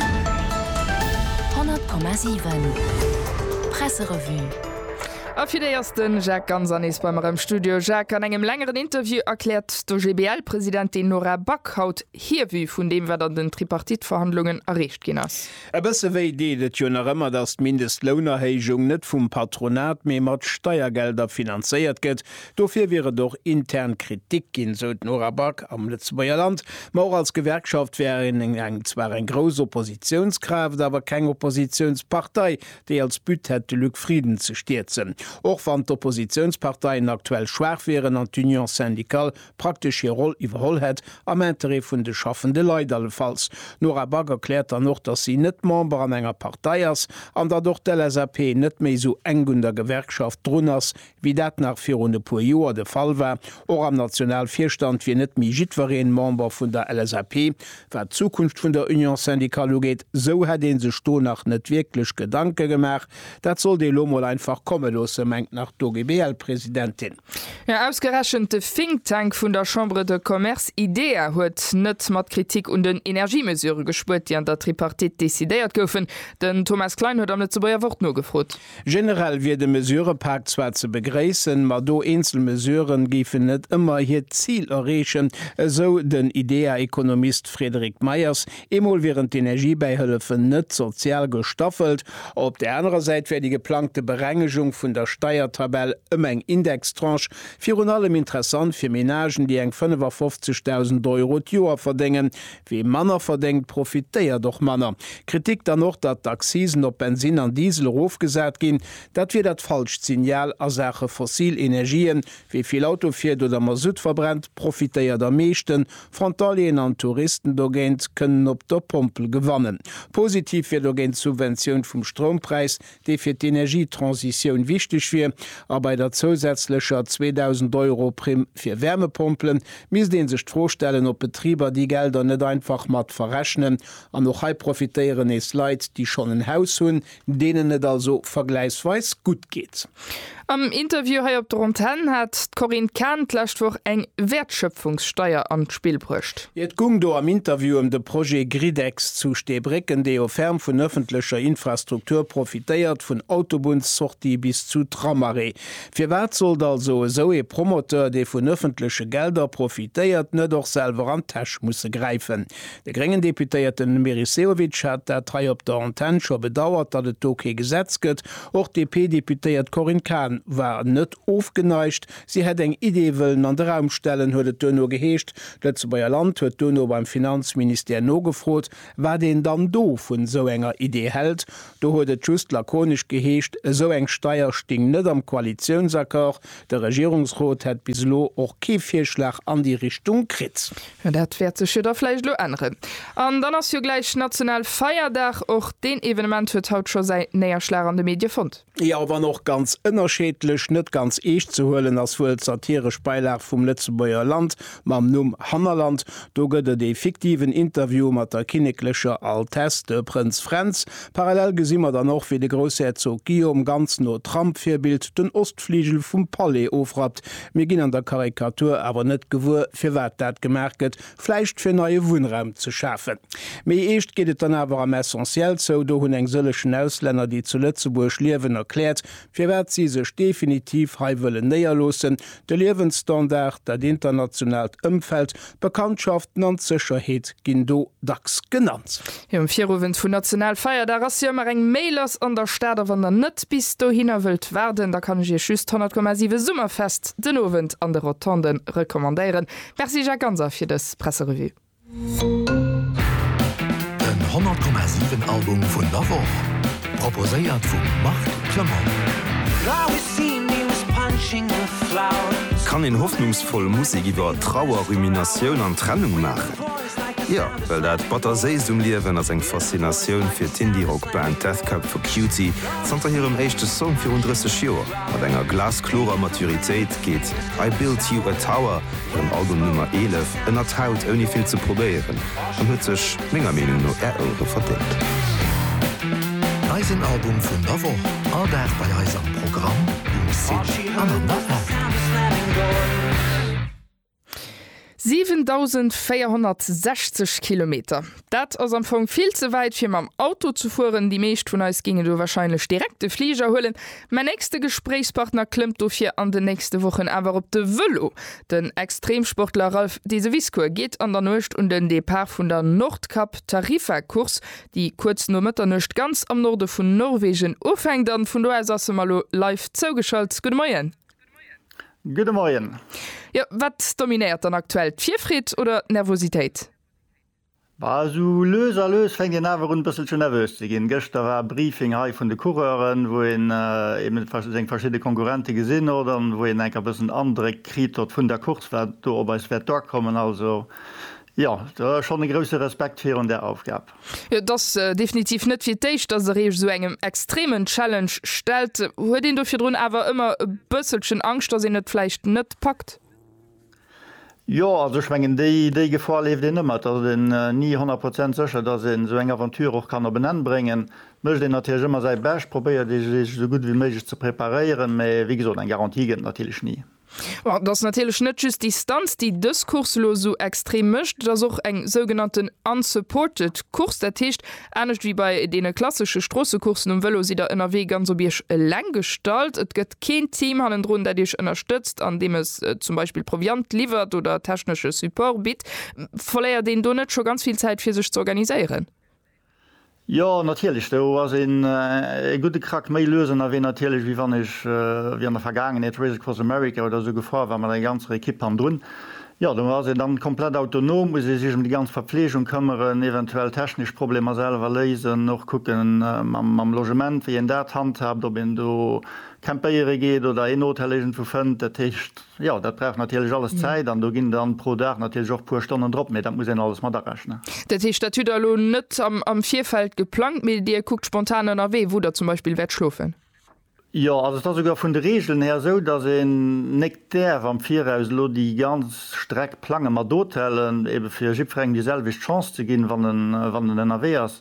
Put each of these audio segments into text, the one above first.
100,7 Presserevue A fir déi ass de Jacques Ganser nees bei mer am Studio. Jacques, an engem längeren Interview erkläert d'OGBL-Presidentin Nora Back haut hir Vue vun deem, wat an den Tripartite-Verhandlungen erreecht ginn ass. E bësse wéi deet et jo nach ëmmer, datt d'Mindestlounerhéijung net vum Patronat, mee mat Steiergelder finanzéiert gëtt. Dofir wier et och intern Kritik ginn, esou d'Nora Back am Lëtzebuerger Land. Ma och als Gewerkschaft wär een zwar eng grouss Oppositiounskraaft, awer keng Oppositiounspartei, déi als But hätt, de Luc Frieden ze stierzen. Och wann d'Oppositiounsparteien aktuell schwaach wieren an d'Union syndicale praktesch hir Roll iwwerholl hätt, am Interêt vun de schaffende Leit allefalls. D'Nora Back erkläert dann och, datt si net Member an enger Partei ass an datt och d'LSAP net méi esou enk un der Gewerkschaft drun ass, wéi dat nach virun e puer Joer de Fall war, och am Nationalvirstand wier net méi jiddwereen Member vun der LSAP, wat d'Zukunft vun der Union syndicale ugeet, esou hätt ee sech do nach net wierklech Gedanke gemaach. Dat sollt ee lo mol einfach komme loosse, mengt nach d'OGBL-Presidentin. Jo, ausgerechent de Think Tank vun der Chambre de Commerce IDEA huet net mat Kritik un den Energiemesure gespuert, déi an der Tripartite decidéiert goufen. Den Thomas Klein huet am Lëtzebuerger Wort nogefrot. Generell wier de Mesurëpak zwar ze begréissen, ma do eenzel Mesurë géifen net ëmmer hiert Zil erreechen, esou den IDEA-Ekonomist Frédéric Meyers. Eemol wieren d'Energiebäihëllefen net sozial gestaffelt. Op der anerer Säit wär déi geplangte Berengegung vun der Steiertabell ëm eng Indextranche virun allem interessant fir Menagen, déi eng 55.000 Euro d'Joer verdéngen, Wee manner verdéngt, profitéiert och manner. Kritik dann och, datt d'Accisen op Bensin an Diesel erofgesat ginn. Dat wier dat falscht Signal a Saache fossil Energien. Wee vill Auto fiert oder Masutt verbrennt, profitéiert am meeschten. Frontalieren an Touristen dogéint kënnen op der Pompel gewannen. Positiv wier dogéint d'Subventioun vum Stroumpräis, dee fir d'Energietransitioun wichteg wier, a bei der zousätzlecher 2.000 Euro Primm fir Wärmepompelen, misst ee sech d'Fro stellen, ob Betriber déi Gelder net einfach mat verrechnen. An och hei profitéieren nees Leit, déi schonn en Haus hunn, deenen et also vergläichsweis gutt geet. Am Interview hei op der Antenn hat d'Corinne Cahen d'lescht Woch eng Wäertschöpfungssteier an d'Spill bruecht. Et gung do am Interview ëm de Projet Gridex zu Steebrécken, dee jo ferm vun ëffentlecher Infrastruktur profitéiert, vun Autobunnssortie bis zu Tramarrêt. Firwat sollt also esou ee Promoteur, dee vun ëffentleche Gelder profitéiert, net och selwer an d'Täsch musse gräifen? De gréngen Deputéierten Meris Sehovic hat dat hei op der Antenn scho bedauert, datt et do kee Gesetz gëtt, Och d'DP-Deputéiert Corinne Cahen war net ofgeneigt. Si hätt eng Idee wëllen an de Raum stellen, huet et duerno geheescht. D'Lëtzebuerger Land huet duerno beim Finanzministère nogefrot, wat een dann do vu sou enger Idee hält. Do huet et just lakonesch geheescht, esou eng Steier sting net am Koalitiounsaccord. De Regierungsrot hätt bis elo och kee Virschlag an déi Richtung kritt. Jo, dat wäert sech jo da vläicht elo änneren. An dann ass jo gläich national Feierdag. Och deen Evenement huet haut scho säi Néierschlag an de Medie fonnt. Jo, a wann och ganz ënnerscheedlech. Net ganz eescht ze huelen ass wuel d'satiresch Beilag vum Lëtzebuerger Land mam Numm Hannerland. Do gëtt et ee fiktiven Interview mat der kinneklecher Altesse, de Prënz Fränz. Parallel gesi mer dann och, wéi de Groussherzog Guillaume ganz no Trump-Virbild den Ostfligel vum Palais ofrappt. Mir ginn an der Karikatur awer net gewuer, firwat dat gemaach gëtt, vläicht fir neie Wunnraum ze schafen. Méi eescht geet et dann awer am Essentiel zou, do hunn eng sëllechen Auslänner, déi zu Lëtzebuerg liewen, erkläert, firwat si sech definitiv hei wëllen néierloossen, de Liewensstandard, dat internationaalt Ëmfeld, Bekanntschaften an d'Sécherheet ginn do dacks genannt. Jo, um Viruwend vun Nationalfeierdag ass jo ëmmer eng Mail lass an der Stad a wann der net bis dohinner wëllt waarden, da kann ech iech just d'Honnertkommasiwe Summerfest den Owend an de Rotonde recommandéieren. Merci Jacques Ganser fir dës Presserevue. Den Honnertkommasiwen Album vun der Woch. Proposéiert vum Marc Clement. Kann een hoffnungsvoll Musek iwwer Trauer, Ruminatioun an Trennung maachen? Jo, well dat Batterséisst um Liewen ass eng Faszinatioun fir d'Indie-Rock-Band Death Cab for Cutie. Zanter hirem éischte Song virun 30 Joer mat enger glasklorer Maturitéit geet I Built You a Tower, hirem Album Nummer 11, ënnert d'Haut ouni vill ze probéieren. an huet sech menger Meenung no är Ouere verdéngt. Eisen Album vun der Woch, all Dag bei eis am Programm, um Site an an der App. 7.460 Kilometer, dat ass am Fong vill ze wäit fir mam Auto ze fueren. Déi meescht vun eis géingen do wahrscheinlech direkt de Fliger huelen, Mäin nächste Gespréichspartner klëmmt dofir an den nächste Wochen awer op de Vëlo. Den Extremsportler Ralph Deseviscourt geet an der Nuecht un den Depart vun der Nordkap Tarifa Course, déi kuerz no Mëtternuecht ganz am Norde vun Norwegen ufänkt. An vun do aus ass e mer lo live zougeschalt. Gudde Moien. Gudde Moien. Jo, wat dominéiert dann aktuell, d'Virfreed oder d'Nervositéit? Bah, esou lues a lues fänkt een awer un e bësselche nervös ze ginn. Gëschter war Briefing hei vun de Coureuren, wou een eben seng verschidde Konkurrente gesinn hott an wou een enker bëssen Andréck kritt hott vun der Course, wat do op eis wäert duerkommen. Also jo, do schonn e grousse Respekt virun där Aufgab. Jo, et ass definitiv net fir d'éischt, dass der Iech esou engem extremen Challenge stellt. Huet een do virdrun awer ëmmer e bësselchen Angscht, dass een et vläicht net packt? Jo, also ech mengen, déi Gefor leeft een ëmmer. Et ass een ni honnert Prozent sécher, dass een esou eng Aventure och kann op en Enn bréngen. Et mécht een natierlech ëmmer säi Bescht, probéiert ee sech esou gutt wéi méiglech ze preparéieren, mee wéi gesot, eng Garantie gëtt et natierlech ni. Bon, et ass natierlech net just d'Distanz, déi dës Course elo esou extrem mécht, et ass och eng sougenannten unsupported Course, dat heescht, Anescht wéi bei deene klassesche Stroossecoursen um Vëlo sidd der ënnerwee ganz op Iech eleng gestallt. Et gëtt keen Team hannendrun, dat Iech ënnerstëtzt an deem es zum Beispill Proviant liwwert oder technesche Support bitt. Verléiert een do net scho ganz vill Zäit fir sech ze organiséieren? Jo, natierlech. Do ass een e gudde Krack méi lues ënnerwee natierlech, wéi wann ech wéi an der Vergaangenheet Race Across America oder esou gefuer war mat enger ganzer Ekipp hannendrun. Jo, do ass een dann komplett autonom, muss ee sech em déi ganz Verpflegung këmmeren, eventuell technesch Problemer selwer léisen, och kucken mam Logement, wéi een dat handhaabt, ob een do campéiere geet oder een Hotel iergendwou fënnt. Dat heescht, jo, dat brauch natierlech alles Zäit an do ginn dann pro Dag natierlech och e puer Stonnen drop, mee dat muss een alles mat arechnen. Dat heescht, dat hutt Der elo net am Virfeld geplangt, mee Dir kuckt spontan ënnerwee, wou Der zum Beispill wäert schlofen? Jo, also et ass esouguer vun de Regeln här esou, dass een nek däerf am Viraus elo déi ganz Streck plangen mat Hotelen, eben fir jiddferengem déi selwecht Chance ze ginn, wann en, wann en ënnerwee ass.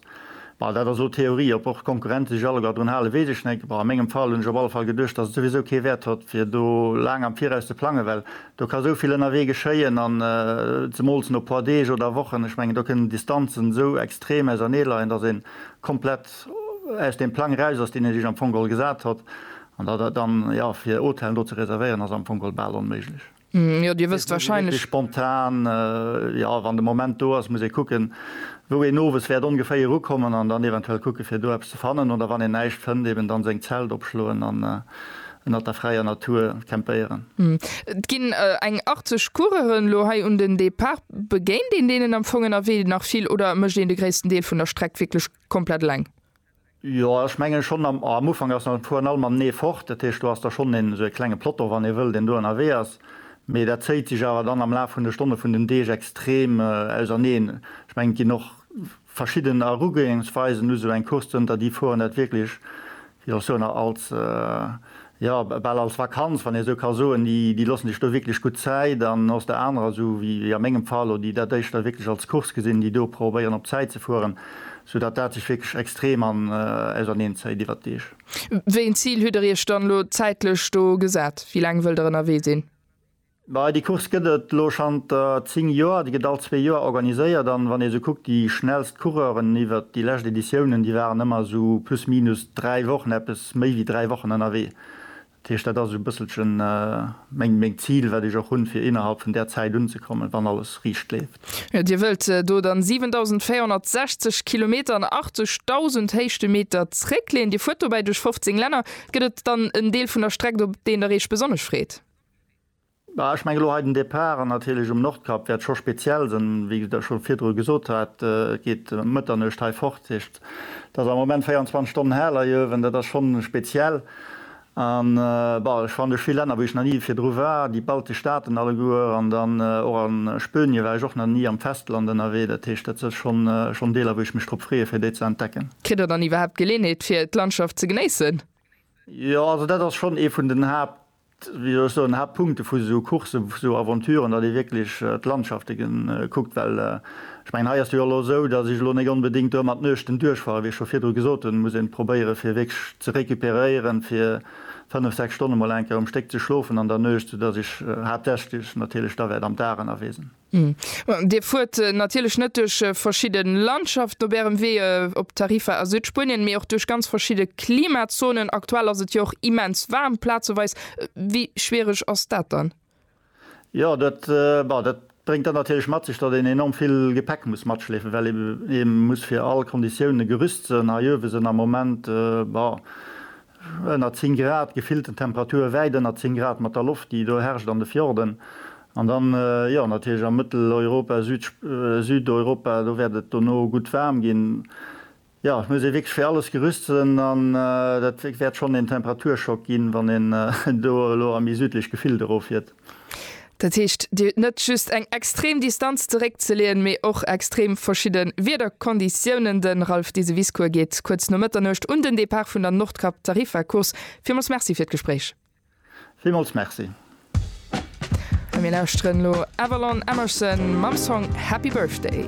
Bon, dat ass elo Theorie. Ob och d'Konkurrenten sech alleguer drun halen, weess ech nek. Bon, a mengem Fall hunn ech op alle Fall geduecht, dass et souwisou kee Wäert hott, fir do laang am Viraus ze plangen, well do ka esouvill ënnerwee geschéien an zemools no puer Deeg oder Wochen. Ech mengen, do kënnen d'Distanzen esou extrem ausernee leien, dass een komplett. Aus deem Plang eraus ass, deen Dir Iech am Fong geholl gesat hutt, an da dat dann, jo, fir Hotellen do ze reservéieren, ass am Fong geholl bal onméiglech. Jo, Dir wësst warscheinlech. Wierklech spontan, jo, wann de Moment do ass, muss ee kucken, wou een owes wäert ongeféier ukommen an dann eventuell kucken, fir do eppes ze fannen oder wann een näischt fënnt, eben dann seng Zelt opschloen an ënnert der fräier Natur campéieren. Et ginn eng 80 Coureuren elo hei un den Depart. Begéint een deenen am Fong ënnerwee nach vill oder mécht een de gréissten Deel vun der Streck wierklech komplett eleng. Jo ech mengen schonn am am Ufank ass nach fueren all mam Nee fort, dat heescht do ass da schonn een esou ee klenge Plotto wann ee wëll deen do ënnerwee ass, mee dat zéiht sech awer dann am Laf vun de Stonne vun den Deeg extrem auserneen. Ech mengen et ginn och verschidden Erugoengsweisen u sou eng Course zënter déi fueren dat wierklech Jo, soen a als, jo, bal als Vakanz, wann ee sou ka soen, déi, déi loossen sech do wierklech gutt Zäit. An aus der anerer, sou wéi, wéi a mengem Fall elo, déi dat éischter wierklech als Course gesinn, déi do probéieren op Zäit ze fueren, soudatt dat sech wierklech extrem an, auserneen zéit iwwert d'Deeg. Wéi een Zil hutt Der Iech dann elo zäitlech do gesat? Wéi laang wëllt Der ënnerwee sinn? Bei déi Course gëtt et elo schanter 10 Joer, déi gëtt all zwee Joer organiséiert an wann ee sou kuckt, déi schnellst Coureuren iwwert déi lescht Editiounen, déi waren ëmmer sou plus minus 3 Wochen, eppes méi wéi 3 Wochen ënnerwee. Dat heescht, dat ass esou e bësselchen meng meng Zil, wat ech och hunn, fir innerhalb vun där Zäit unzekommen, wann alles riicht leeft. Jo, Dir wëllt do dann 7.460 Kilometer an 80.000 Héichtemeter zréckleeën. Dir fuert dobäi duerch 15 Länner. Gëtt et dann en Deel vun der Streck, op deen Der Iech besonnesch freet? Ech mengen elo hei den Départ, an natierlech um Nordkap, wäert scho speziell sinn. Wéi ech scho virdru gesot hat, et geet ëm Mëtternuecht hei fort. Dat heescht, et ass am Moment 24 Stonnen hell hei uewen. Dat ass schonn speziell. An, bon, ech fannen duerch vill Länner, wou ech nach ni virdru war, déi baltesch Staaten alleguer, an dann och a Spönie war ech och nach ni, am Festland ënnerwee. Dat heescht, dat si schonn Deeler, wou ech mech drop freeë fir déi ze entdecken. Kritt der dann iwwerhaapt d'Geleeënheet fir d'Landschaft ze genéissen? Jo, also dat ass schonn ee vun den Haapt, wéi soll ech soen, Haaptpunkte vu sou Coursse, vu sou Aventuren, datt ee wierklech d'Landschafte kuckt. Well ech mengen, hei ass jo elo esou, datt ech elo net onbedéngt do ëmmer d'Nuechten duerchfahre, wéi ech scho virdru gesot hunn, muss ee probéiere fir wierklech ze recuperéieren, fir fënnef, sechs Stonne mol eng Kéier um Stéck ze schlofen an der Nuecht, soudatt ech haaptsächlech natierlech da wäert am Dag ënnerwee sinn. Dir fuert natierlech net duerch verschidde Landschaften op Ärem Wee op Tarifa a Südspuenien, mee och duerch ganz verschidde Klimazonen. Aktuell ass et jo och immens waarm plazeweis. Wéi schwiereg ass dat dann? Jo, dat bréngt dann natierlech mat sech, datt een enorm vill Gepäck muss matschleefen, well ee muss fir all Konditioune gerüst sënn. Hei uewe sënn am Moment ënner 10 Grad, gefillten Temperature wäit ënner 10 Grad mat der Loft, déi do herrscht an de Fjorden. An dann, jo, natierlech a Mëtteleuropa, Südeuropa, do wäert et dono gutt waarm ginn. Jo, et muss ee wierklech fir alles gerüst sinn an dat wäert schonn een Temperaturschock ginn, wann een do elo a méi südlech Gefillt eroffiert. Dat heescht, Dir hutt net just eng extrem Distanz zeréckzeleeën, mee och extrem verschidde Wiederkonditiounen. De Ralph Diseviscourt geet kuerz no Mëtternuecht un den Depart vun der Nordkap-Tarifa-Course. Villmools Merci fir d'Gespréich. Villmools Merci. A mir lauschteren elo Avalon Emerson mam Song Happy Birthday.